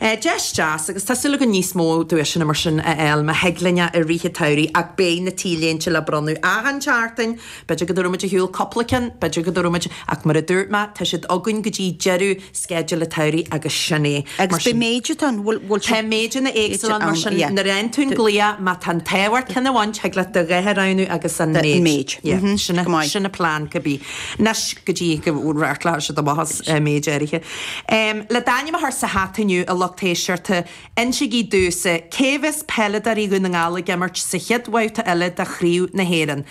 Deis deas, agus tá súil againn níos mó duaiseanna mar sin a fháil má thig linn é i rith an tsamhraidh ach beidh na t-léinte le bronnadh achan tseachtain, b'fhéidir go dtabharfaimid ar shiúl cúpla ceann, b'fhéidir go dtabharfaimid ach mar a dúirt mé tá siad againn go dtí deireadh sceidil an tsamhraidh agus sin é. Agus beidh méid atá ann, bhfuil siad. Tá méideanna éagsúla ann mar sin nuair a fhaigheann tú an glaoch, má tá an t-ádh ort ceann a bhaint, thig leat do dhath a roghnú agus an méid. Sin an plean, cibé. Anois go dtí go reáchtálfaidh siad amach as méid áirithe. Le d'ainm a chur sa hata inniu, a lucht éisteachta, insigí domhsa, cé bheas peileadóirí Dhún na nGall ag imirt sa chéad bhabhta eile de Chraobh na hÉireann?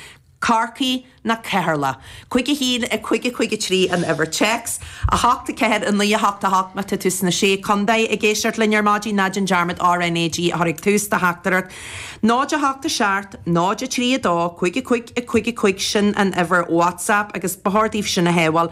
Corcaigh nó Ceatharlach? Cúig a haon, a cúig, a cúig a trí an uimhir téacs. A hocht, a ceathair, a naoi, a hocht, a hocht, má tá tú sna Sé Condae ag éisteacht linn ar maidin, ná déan dearmad RNAG a chur ag tús do theachtaireacht. 0 8 7 0 3 2 5 5 5 5 sin an uimhir WhatsApp agus ba chóir daoibh sin a shábháil.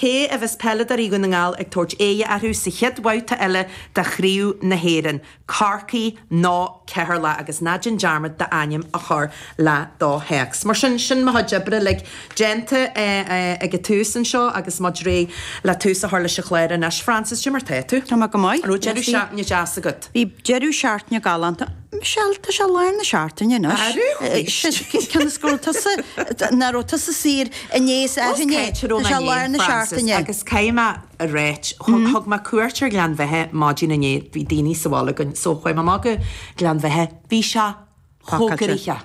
Cé a bheas peileadóirí Dhún na nGall ag tabhairt aghaidh orthu sa chéad bhabhta eile de Chraobh na hÉireann, Corcaigh nó Ceatharlach? Agus ná déan dearmad d'ainm a chur le do théacs. Mar sin, sin mo chuid oibre uilig déanta ag an tús anseo agus muid réidh le tús a chur leis an chlár anois. Frances, cad é mar tá tú? Tá mé go maith. An raibh deireadh seachtaine deas agat? Bhí deireadh seachtaine galánta. Michelle, tá sé lár na seachtaine anois. Tá rith arís. Cionn is go raibh tusa, nach raibh tusa saor inné, so tá sé lár na seachtaine. Os caite romhainn, a Frances, agus caithfidh mé a ráit, thug mé cuairt ar Ghleann Bheithe maidin inné, bhí daoine sa bhaile againn, so chuaigh mé amach go Gleann Bheithe, bhí sé chomh gnoitheach.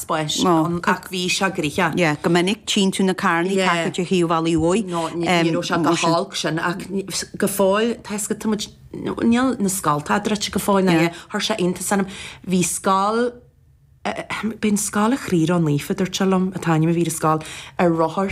spás ann ach bhí sé gnoitheach. Go minic, tchíonn tú na carrannaí ar thaobh an bhealaigh mhóir. Nó ní raibh sé chomh holc sin, ach go fóill, tá a fhios agat, tá muid, níl na scoltacha druidte go fóill, nó chuir sé iontas orm. Bhí scoil, b'é an scoil, an Chroí Ró-Naofa, dúirt sé liom, an t-ainm a bhí ar an scoil, ar rothar.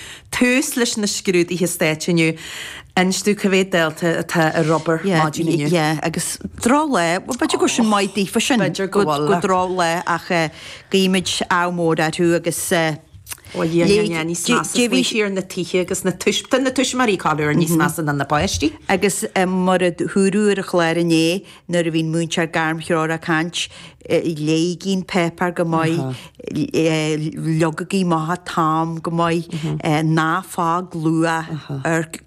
tús leis na scrúduithe stáit inniu. Meas tú cá mhéad dalta atá ar obair maidin inniu? Yeah, yeah, agus droch lá, bhuel, b'fhéidir go bhfuil sin maith daofa sin. B'fhéidir go bhfuil. Go droch lá ach guímid ádh mór orthu agus. Ó yeah, yeah, yeah, níos measa faoi thiar na tithe agus na tuismitheoirí corruair níos measa ná na páistí. Agus mar a dúradh ar an chlár inné, Nuair a bhí an múinteoir gairmthreorach ag caint, léigí an páipeár go maith, leagaigí amach an t-am go maith, ná fág luath,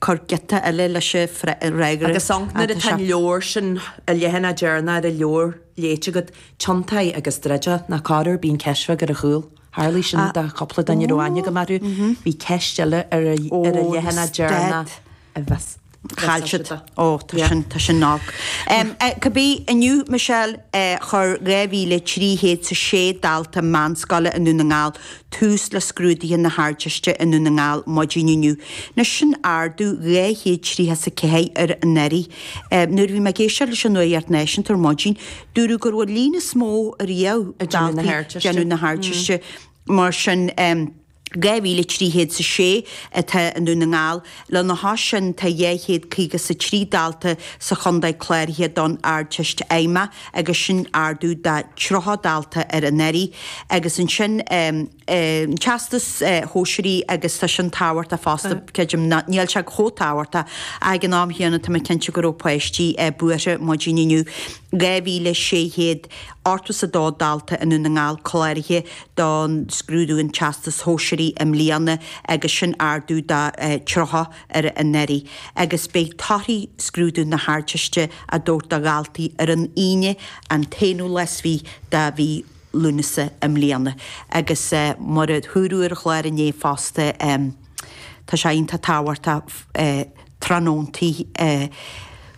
cuir giota eile leis an fhreagra. Agus ansin nuair atá an leabhar sin, an leathanach deireanach ar an leabhar, léite agat, tiontaigh é agus druid é, nó corruair, bíonn ceist bheag ar a chúl. Tharlaigh sin do chúpla duine a raibh aithne agam orthu, bhí ceist eile ar an leathanach deireanach. a bheas caillte. Ó, tá sin, tá sin olc. Cibé, inniu, Michelle, chuir 2,306 dalta meánscoile i nDún na nGall tús le scrúduithe na hArdteiste i nDún na nGall maidin inniu. Anois, sin ardú dhá chéad tríocha is a ceathair ar anuraidh. Nuair a bhí mé ag éisteacht leis an nuacht náisiúnta ar maidin, dúradh go raibh an líon is mó riamh daltaí ag déanamh na hArdteiste, mar sin. 2,300 is a sé atá i nDún na nGall. Lena chois sin, tá dhá chéad caoga is a trí dalta sa chontae cláraithe don Ardteist Fheidhmeach agus sin ardú de tríocha dalta ar anuraidh. Agus ansin an Teastas Shóisearaigh agus tá sin tábhachtach fosta, creidim. Ná níl sé chomh tábhachtach ach ag an am chéanna tá mé cinnte go raibh páistí buartha maidin inniu. 2,600. Ochtó is a dó dalta i nDún na nGall cláraithe don scrúdú an Teastais Shóisearaigh i mbliana agus sin ardú de 30 ar anuraidh. Agus beidh torthaí scrúdú na hArdteiste á dtabhairt do dhaltaí ar an Aoine an t-aonú lá is fiche de mhí Lúnasa i mbliana. Agus mar a dúradh ar an chlár inné fosta tá sé iontach tábhachtach tráthnóntaí a.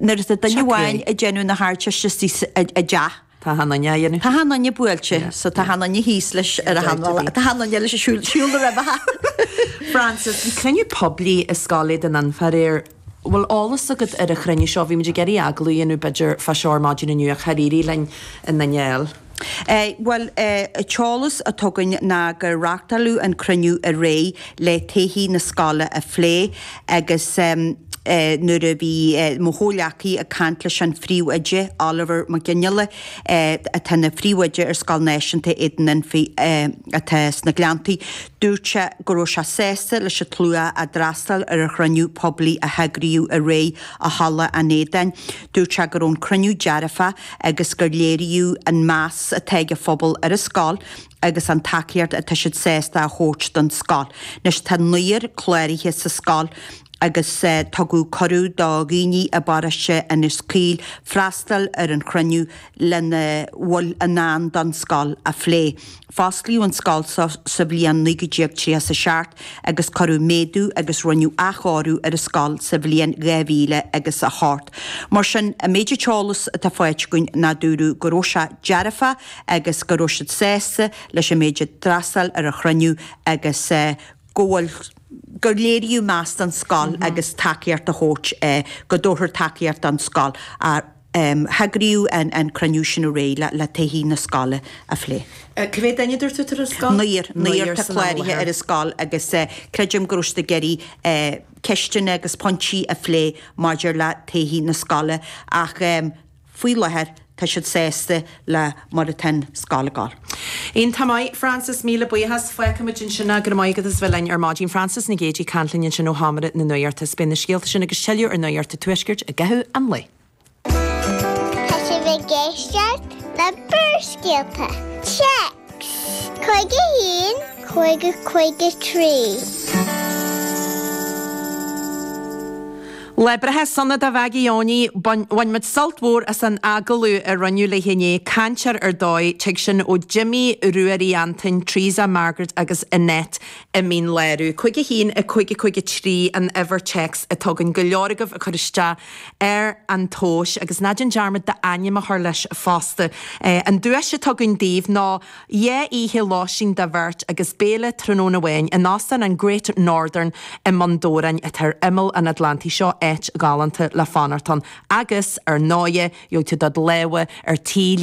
Nuair atá duine amháin ag déanamh na hardteiste i dteach, tá achan duine buailte, so tá achan duine thíos leis ar a hanla, tá achan duine eile ag siúl na roimhe. Frances, Bhí cruinniú poiblí i Scoil Éadan Anfa aréir. Bhfuil eolas agat ar an chruinniú seo? Bhí muid ag iarraidh agallamh a dhéanamh b'fhéidir fá seo ar maidin inniu ach char éirigh linn aon duine a fháil. Eh bhuel eh, an t-eolas atá againn ná gur reachtáileadh an cruinniú aréir le todhchaí na scoile a phlé agus ehm eh nuair a bhí eh mo chomhleacaí ag caint leis an phríomhoide, Oliver Mac Fhionnghaile eh atá ina phríomhoide ar Scoil Náisiúnta Éadan Anfa eh atá sna Gleanntaí, dúirt sé go raibh sé sásta leis an tslua a d'fhreastail ar an chruinniú poiblí a heagraíodh aréir i Halla an Éadain. Dúirt sé go raibh an cruinniú dearfach. agus gur léiríodh an meas atá ag an phobal ar an scoil agus an tacaíocht atá siad sásta a thabhairt don scoil. Anois tá naonúr cláraithe sa scoil agus tugadh cuireadh do dhaoine i bParóiste Inis Caoil freastal ar an chruinniú lena bhfuil i ndán don scoil a phlé. Fosclaíodh an scoil seo sa bhliain 1937 agus cuireadh méadú agus rinneadh athchóiriú ar an scoil sa bhliain dhá mhíle agus a hocht. Mar sin, an méid, an t-eolas atá faighte againn ná dúradh go raibh sé dearfach agus go raibh siad sásta leis an méid a d'fhreastail ar an chruinniú agus go bhfuil. gur léiríodh meas don scoil agus tacaíocht a thabhairt go dtabharfar tacaíocht don scoil. heagraíodh an cruinniú sin aréir le todhchaí na scoile a phlé. Cé mhéad duine dúirt tú atá ar an scoil? Naonúr. Naonúr atá cláirithe ar an scoil agus creidim go raibh siad ag iarraidh ceisteanna agus pointí a phlé maidir le todhchaí na scoile ach faoi láthair tá siad sásta le mar atá an scoil ag déanamh. Iontach maith, Frances, míle buíochas. Fágfaidh muid ansin é, go raibh maith agat as a bheith linn ar maidin. Frances Nic Géadaigh ag caint linn ansin ó sheomra na nuachta. Is beidh na scéalta sin agus tuilleadh ar Nuacht a' Tuaiscirt i gcaitheamh an lae. Tá sibh ag éisteacht le Barrscéalta, text, 51 5 53. Lá breithe sona do Mhaggie Eoiní, bhain muid sult mhór as an agallamh a rinneadh léi inné, cainteoir ar dóigh, tig sin ó Jimí, Ruairí Antain, Treasa, Margaret agus Annette i Mín Lárach. 51 5 53 an uimhir téacs atá againn, go leor agaibh ag cur isteach ar an tomhas, agus ná déan dearmad d'ainm a chur leis fosta. An duais atá againn daoibh ná. Dhá oíche lóistín do bheirt agus béile tráthnóna amháin in Óstán an Great Northern i mBun Dobhráin atá ar imeall an Atlantaigh seo, áit ghalánta le fanacht ann agus, ar ndóighe, gheobhaidh tú do lámha ar tuilleadh